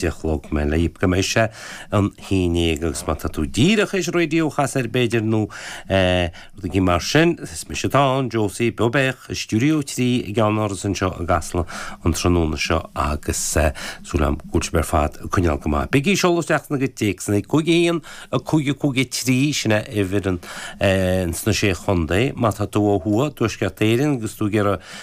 de chlog me leib go mbeidh sé an Fhínéag agus má tá tú díreach is raidió casta air b'fhéidir nó rudaigí mar sin is mise atá ann, Josie beo beathach i Stiúideo 3 i gCeannáras anseo i gCasla an tráthnóna seo agus tá súil agam go bhfuil sibh ar fad ag coinneáil go maith. Bígí ag seoladh isteach bhur gcuid téacsanna 5-1, 5-5-3 sin é uimhir ann sna Sé Chontae. Má tá tú ó thuaidh Tuaisceart Éireann agus tú ag iarraidh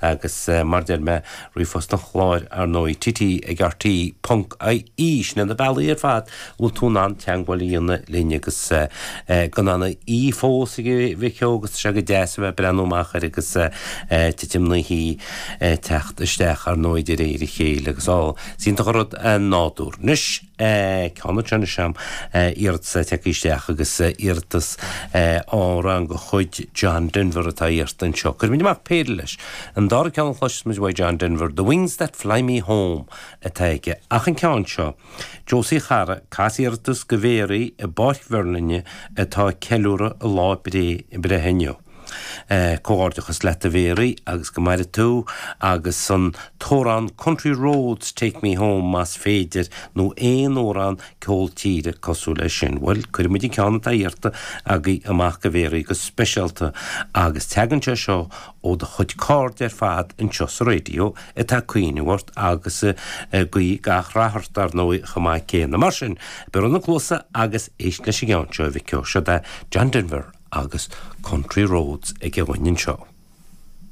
Agus mar a deir mé ríomhphost an chláir, ar ndóigh, TT ag RTE.IE sin iad na bealaí ar fad go bhfuil tú in ann teagmháil a dhéanamh linn agus gan an oíche fós a mhic ó agus tá sé go deas a bheith ag breathnú amach air agus titim na hoíche ag teacht isteach ar ndóigh de réir a chéile agus á, is iontach an rud an nádúr. Anois. Connacht anois ann iarratas a thiocfaidh isteach agus iarratas ar amhrán de chuid John Denver atá iarrta anseo. Cuirfimid amach péire leis. An dara ceann a chloisfeas muid uaidh John Denver, 'The Wings that Fly Me Home' atá aige. Ach an ceann seo, Josie a chara, cas iarratas go Mhéaraí i bPáirc Mherlinne atá ag ceiliúradh a lá breithe inniu. Comhghairdeachas leat a Mhéaraí agus go maire tú agus seo an t-amhrán Country Roads Take Me Home más féidir nó aon amhrán ceol tíre cosúil leis sin. Bhuel, cuirfidh muid an ceann atá iarrta agaibh amach go Mhéaraí go speisialta agus teagann sé seo ó do chuid cairde ar fad anseo sa raidio, atá ag cuimhneamh ort agus ag guí gach rath ort, ar ndóigh, chomh maith céanna. Mar sin, bioraigh na cluasa agus éist leis an gceann seo, a mhic ó. Siod é John Denver agus Country Roads aige dúinn anseo.